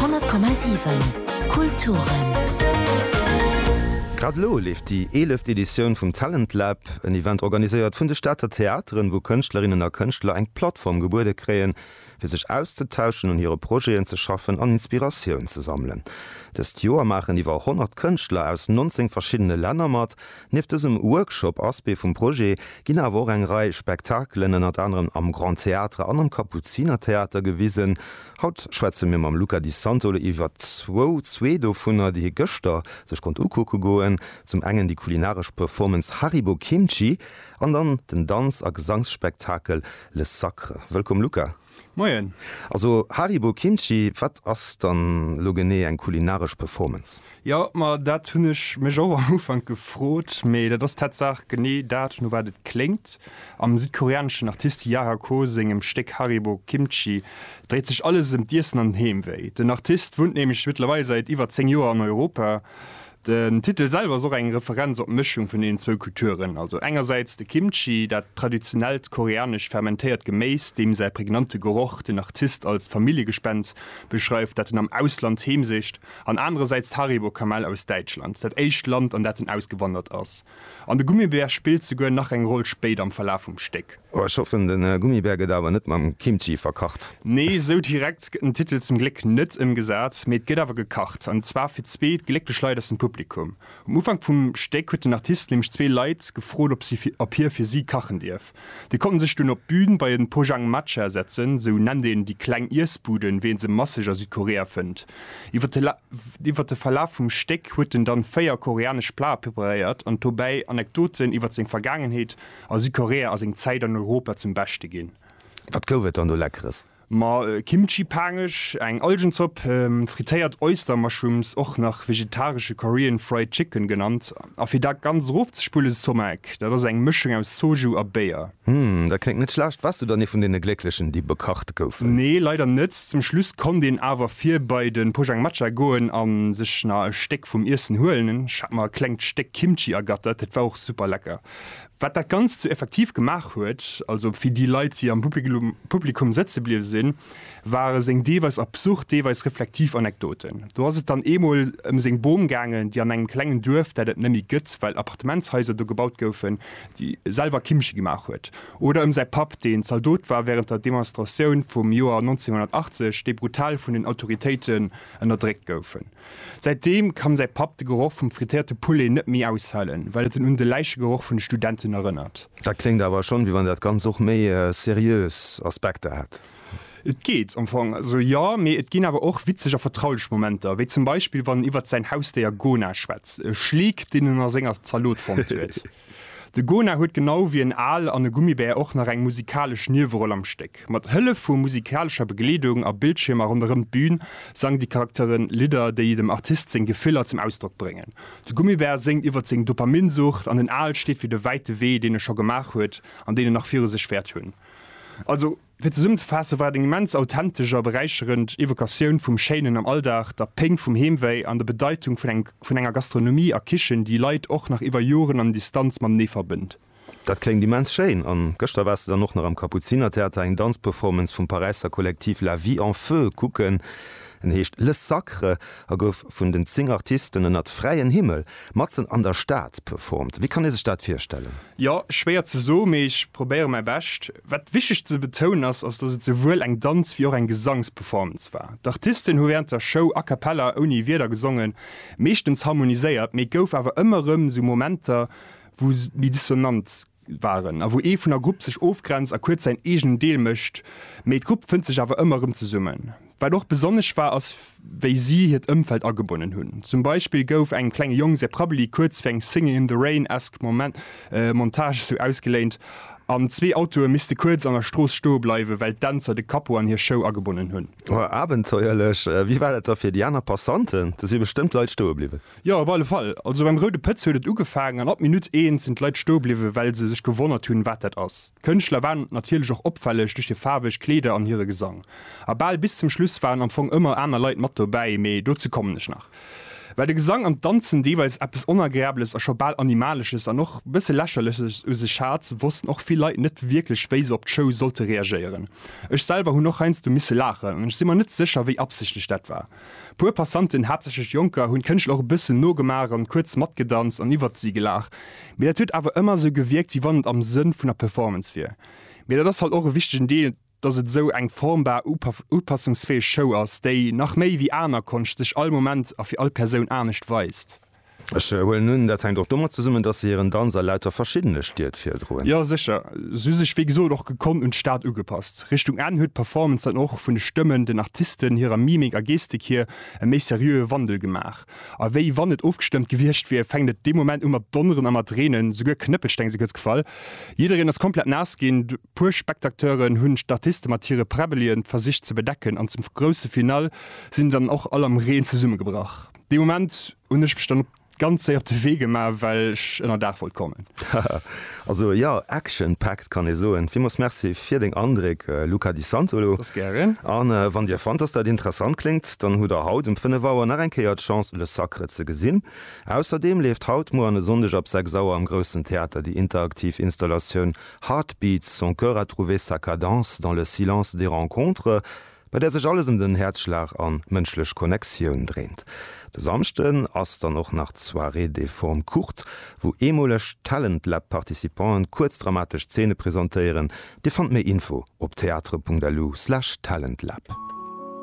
100,7 Kulturen. Grad elo leeft déi eeleft Editioun vum Talent Lab, en Event organiséiert vun de Stater Theateren, wou Kënschtlerinnen a Kënschtler eng Plattform gebuede kréien, fir sech auszetauschen, un hire Projeten ze schaffen an Inspiratioun ze sammelen. Dëst Joer maachen iwwer 100 Kënschtler aus 19 verschiddene Länner mat. Nieft dësem Workshop, Aspect vum Projet, ginn awer och eng Rei Spektakelen ënnert anerem am Grand Théâtre an am Kapuzinertheater gewisen. Haut schwätze mir mam Luca Di Santo iwwert zwou, zwee dovunner, déi hie gëschter sech konnt ukucke goen, zum engen déi kulinaresch Performance Haribo Kimchi an dann den Danz a Gesangsspektakel Le Sacre. Wëllkomm Luca! Moien. Also Haribo Kimchi, wat ass dann lo genee eng kulinaresch Performance? Jo, ma dat hunn ech mech och am Ufank gefrot, mee dat ass tatsaach genee dat, no wat et kléngt. Am südkoreaneschen Artist Yara Ko sengem Stéck Haribo Kimchi dréit sech alles ëm d'Iessen an den Heemwéi. Den Artist wunnt nämlech mëttlerweil säit iwwer 10 Joer an Europa. Den Titel selwer ass och eng Referenz op d'Mëschung vun deenen zwou Kulturen, also engersäits de Kimchi, dat traditionellt koreanescht fermentéiert Geméis, deem säi prägnante Geroch den Artist als Familljegespenst beschreift, dat en am Ausland heemsicht, an anerersäits d'Haribo-Kamell aus Däitschland, dat éischt Land, an dat en ausgewandert ass. An de Gummibär spillt souguer nach eng Roll spéit am Verlaf vum Stéck. Oh, ech hoffen, de Gummibär gëtt awer net mam Kimchi verkacht. Nee, esou direkt gëtt den Titel zum Gléck net ëmgesat, mee et gëtt awer gekacht, an zwar fir zwee glécklech Leit aus dem Publikum. Um Ufank vum Stéck huet den Artist nämlech zwee Leit gefrot, ob si, ob hie fir si kachen dierf. Déi konnten sech dunn op d'Bühn bei en Pojang Matcha setzen, sou nennt een déi kleng Iessbuden, wéi een se masseg a Südkorea fënnt. Iwwer de Verlaf vum Stéck huet en dann véier koreanesch Plae preparéiert an dobäi Anekdoten iwwer seng Vergaangenheet a Südkorea a seng Zäit an Europa zum Beschte ginn. Wat gouf et dann do Leckeres? Ma Kimchi-Paangesch, eng Algenzopp, frittéiert Oyster-Mushrooms, och nach vegetaresche Korean Fried Chicken genannt, a fir dat Ganzt erofzespullen, Somaek, dat ass eng Mëschung aus Soju a Béier. Hm, dat kléngt net schlecht. Waars du dann ee vun deene Glécklechen, déi bekacht goufen? Nee, leider net. Zum Schluss konnt een awer vir bei de Pojangmatcha goen a sech nach e Stéck vum Iessen huelen. Ech hat mer e klengt Stéck Kimchi ergattert, dat war och super lecker. Wat dat Ganzt sou effektiv gemaach huet, also fir déi Leit, déi am Publikum sëtze bliwwe sinn, ware seng deelweis absurd, deelweis reflektiv Anekdoten. Do ass et dann eemol ëm seng Bom gaangen, déi an engem klengen Duerf, dat et nëmmi gëtt, well Appartementshaiser do gebaut goufen, selwer Kimchi gemaach huet. Oder ëm säi Papp, deen Zaldot war wärend der Demonstratioun vum Joer 1980, déi brutal vun den Autoritéiten ënnerdréckt goufen. Säitdeem kann säi Papp de Geroch vum frittéierte Poulet net méi aushalen, well et en un de Läichegeroch vun de Studenten erënnert. Dat kléngt awer schonn, wéi wann dat Ganzt och méi seriös Aspekter hätt. Et geet am Fong esou, jo. Mee et ginn awer och witzeg a vertraulech Momenter, wéi zum Beispill, wann en iwwert säin Hausdéier Gona schwätzt, e Schleek, deen en a senger Zalot fonnt huet. De Gona huet genau wéi en Al an e Gummibär och nach eng musikalesch Nieweroll am Stéck. Mat Hëllef vu musikalescher Begleedung a Bildschiermer ronderëm d'Bün sangen déi Charaktere Lidder, déi dem Artist seng Gefiller zum Ausdrock bréngen. De Gummibär séngt iwwer seng Dopaminsucht an den Al steet fir de wäite Wee, deen e scho gemaach huet an deen en nach viru sech wäert hunn. Also. Fir zesummzefaassen, war et eng immens authentesch a beräicherend Evokatioun vum Schéinen am Alldag, der Péng vum Heemwéi an der Bedeitung vun engem, vun enger Gastronomie a Kichen, déi Leit och nach iwwer Joren an Distanz matenee verbënnt. Dat kléngt immens schéin. An gëschter waars de dann och nach am Kapuzinertheater eng Danzperformance vum Paräisser Kollektiv La Vie en Feu kucken. En heescht Le Sacre a gouf vun den 10 Artisten ënnert fräien Himmel Matzen an der Stad performt, wéi kann ee sech dat virstellen? Jo, schwéier ze soen, mee ech probéiere mäi Bescht. Wat wichteg ze betounen ass, ass datt et souwuel eng Danz wéi och eng Gesangsperformance war. D'Artisten hu wärend der Show a cappella, ouni Wierder gesongen, meeschtens harmoniséiert, mee et gouf awer ëmmer erëm sou Momenter wou méi dissonant waren a wou ee vun der Grupp sech ofgrenzt a kuerz säin eegenen Deel mécht, mee d'Grupp fënnt sech awer ëmmer erëm zesummen. Wat och besonnesch war ass wéi si hiert Ëmfeld agebonnen hunn. Zum Beispill gouf engem klenge Jong säi Prabbeli kuerz fir eng Singing in the Rain-esque Montage esou ausgeléint an zwee Autoe misste kuerz an der Strooss stoe bleiwen, well d'Dänzer de Capot an hir Show agebonnen hunn. Abenteuerlech! Wéi war dat da fir déi aner Passanten? Do si bestëmmt Leit stoe bliwwen. Jo, op alle Fall. Also beim Roude Pëtz huet et ugefaangen an ab Minutt eent sinn d'Leit stoe bliwwen, well se sech gewonnert hunn, wat dat ass. D'Kënschtler waren natierlech och opfälleg duerch hir faarweg Kleeder an hire Gesang. A bal bis zum Schluss waren am Fong ëmmer aner Leit mat dobäi, mee dozou kommen ech nach. Well de Gesang an d'Danzen deelweis eppes Onagreables a scho bal Animalesches an och e bësse Lächerleches u sech hat, wossten och vill Leit net wierklech, wéi se op d'Show sollte reagéieren. Ech selwer hunn och heiansdo misse laachen an ech si mer net sécher, wéi absichtlech dat war. Puer Passanten, haaptsächlech Jonker, hunn d'Kënschtler och e bëssen nogemaach an kuerz matgedanzt an iwwert si gelaach. Mee dat huet awer ëmmer esou gewierkt, wéi wann et am Sënn vun der Performance wier. Mee dat ass halt och e wichtegen Deel, dass et esou eng formbar, upassungsfäeg Show ass, déi, nach méi wéi aner Konscht, sech all Moment a fir all Persoun anescht weist. Ech huelen un, dat hänkt och domat zesummen, datt se hiren Danz a lauter verschiddene Stied virdroen. Jo sécher, se hu sech wéi gesot och gekonnt un d'Stad ugepasst. Richtung Enn huet d'Performance dann och vun de Stëmmen, den Artisten, hirer Mimik a Gestik hier e méi seriöe Wandel gemaach. A wéi wann et ofgestëmmt gewiescht wier, fänkt et dee Moment u mat donneren a mat reenen, souguer Knëppelsteng si kuerz gefall. Jiddereen ass komplett naass ginn, puer Spectacteuren hunn d'Artiste mat hire Präbbelien versicht ze bedecken an zum grousse Finale sinn dann och all am Reen zesummegebrach. Dee Moment hunn ech mech dann ganz séier op de Wee gemaach, well ech ënnerdaach wollt kommen. Haha, also jo, action-packed kann ee soen. Villmools Merci fir deng Andréck, Luca Di Santolo. Ass gären. A wann Dir fannt, dass dat interessant kléngt, dann hutt Der haut um 5 Auer nach eng Kéier d'Chance, Le Sacre ze gesinn. Ausserdeem leeft haut, muer an e Sonndeg ab 6 Auer am Groussen Theater déi interaktiv Installatioun Heartbeats, son cœur a trouvé sa cadence dans le silence des rencontres. bei där sech alles ëm den Häerzschlag an d'mënschlech Connectioun dréint. De Samschden ass dann och nach d'Soirée des formes courtes, wou eemoleg Talent Lab Participanten kuerz dramatesch Zeene presentéieren. Dir fannt méi Info op theatre.lu/talentlab.